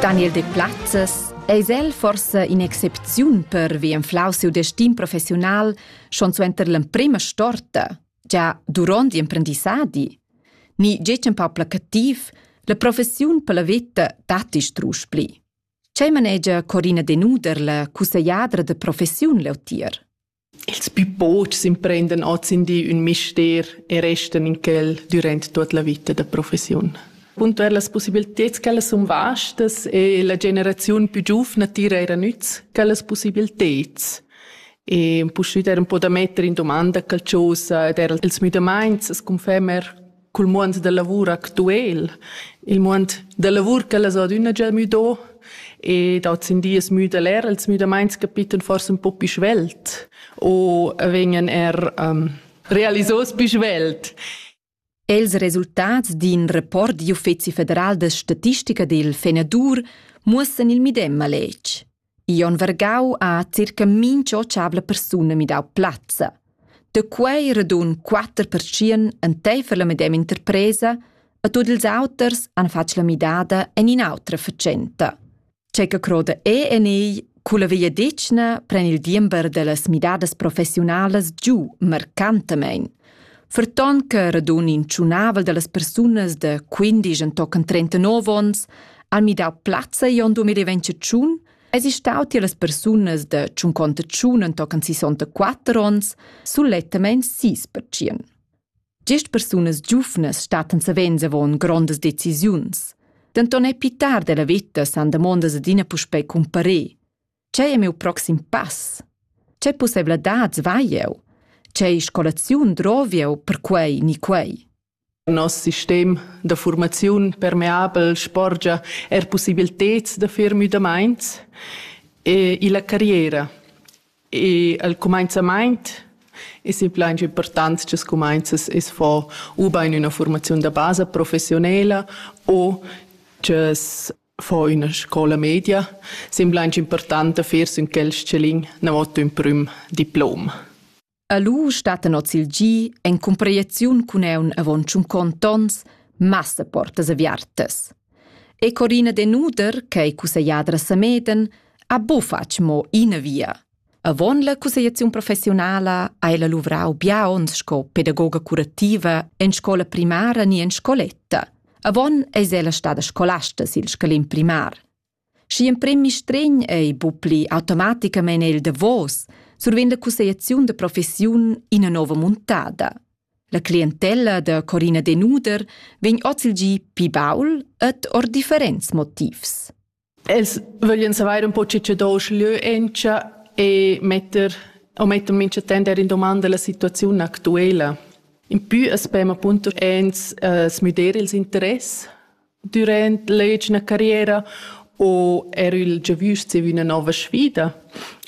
Daniel Deplazes eis el forsa in'excepziun pervi enflau siu destin professiunal schon suenter l'emprema storta, gia duront l'imprendissadi. Ni getg empau placativ, la professiun per la veta datti strusch pli. Tgei manegia Corina Denuder, la cussegladra de professiun leutier? Ils pü pochs imprendan ozendi ün mister e restan in quel dürant tuot la vita da professiun. Puntuer las possibilteds ch'ellas sun vastas e la generaziun pü giuvna tira eir a nüz quellas possibilteds. E puschüt er un po da metter in dumanda qualchosa ed er ils müdamaints as confermer cul muond da lavur actuel, il muond da lavur ch'ellas ha adüna già müdo e dats in dies müda'l er, els müdamaints capitan forsa ün po pü svelt o vegnan er um, realisos pü svelt. Els resultats d'in report d'Uffezi federal da statistica del Fenadur muossan il medem maletg. Jon Vargau ha circa mincha otschavla persuna midau plazza. Da quei radun quatter perschien enteifer la medema interpresa e tut ils auters han fatg la midada en in'autra fatschenta. C'è che croda e en ei Culla vegliadetgna pren il diember dallas midadas professionalas giu marcantamein. Ferton che radun in tschunavel dallas persunas da quindisch entochen trentanov onns han midau plazza igl 2021, esi stau tier las persunas da tschunconta tschun entochen sisontaquatter onns sulettamein sis pertschien. Gest persunas giuvnas stattan savens avon grondas decisiuns. Denton è pitar della vita san damondas adina puspei cumparer. Tgei è miu proxim pass? Tgei pusseivladads vai jeu? Tgei scolaziun drovieu per quei ni quei? Nos sistem da formaziun permeabel sporgia er possibilteds da fer müdamaints e illa carriera. E al cumainzamaint es il plan important che scumainzas es fo u bain üna formaziun da basa professionela o che fo üna scoula media. Sembla aunch important da fer sün quel s-chalin n'avot ün prüm diplom. E lu stattan oz il gi en comprehensiun cun eun avon tschunconт ons massa portas aviartas. E Corina Denuder, che ei cussegliadra Sameden, ha bufatg mo ina via. Avon la cussegliaziun professiunala hai la luvrau bia onns sco pedagoga curativa en scola primara ni en scoletta. Avon eis ella stada scolasta sil scalin primar. Schi emprem mistregn ei bupli automaticamein el davos, survegn la cussegliaziun da professiun ina nova muntada. La clientella da Corina Denuder vegn oz il gi pi baul ed or differents motivs. Els vöglien savair un po che che do leu encha e metter o metter mincha tender in domanda la situaziun actuela. In pü as pem appunto ins uh, smüder ils interess durant l'egina carriera o er il giavüsch zieva üna nova sfida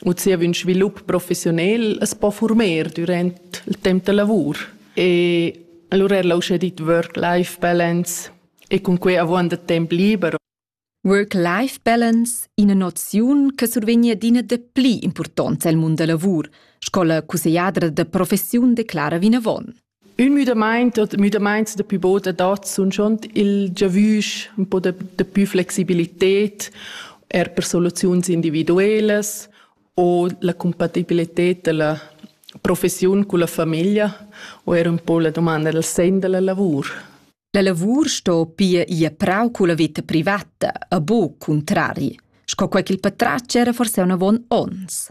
u zieva ün svilup professionel as po former durant il temp da lavur. E allora er l'ha uschè dit work-life balance e cun quei avuonda temp liber Work-Life Balance ina noziun che survegnia adina dapli impurtonza el mund da lavur, sco la cussegliadra da professiun declara vinavon. Il müdamaint oder die Müdamaints der Pivot adatts sun schon il giavüsch un po de, de più flexibilität er per soluziuns individuelas o la compatibilität della professiun con la famiglia o er un po la domanda del sen della lavur. La lavur sto pia ir prau culla veta privata e buc cuntrari, sco quei ch'il patratg era forse avon onns.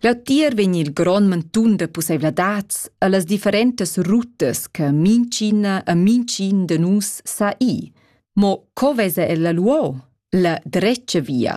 Leutier vegn il grond mantun da pusseivladads e las differentas rutas che mincina e mincin de nus sa i. Mo co vesa ella luo? La drecia via.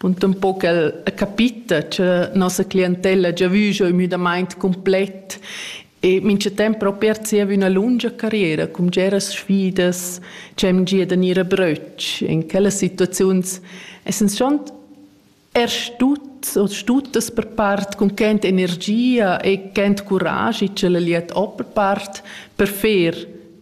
Bundumpo ch'el ha capita cha nossa clientella ha già vü giò ün müdamaint cumplet e mincha temp propi ha zieva üna lungia carriera cun bgeras sfidas cha hem gia da gnir a bröch. In quellas situaziuns essans schont er stut o stutas per part cun ch'ent energia e ch'ent curaschi ch'ella gliet ho per part per fer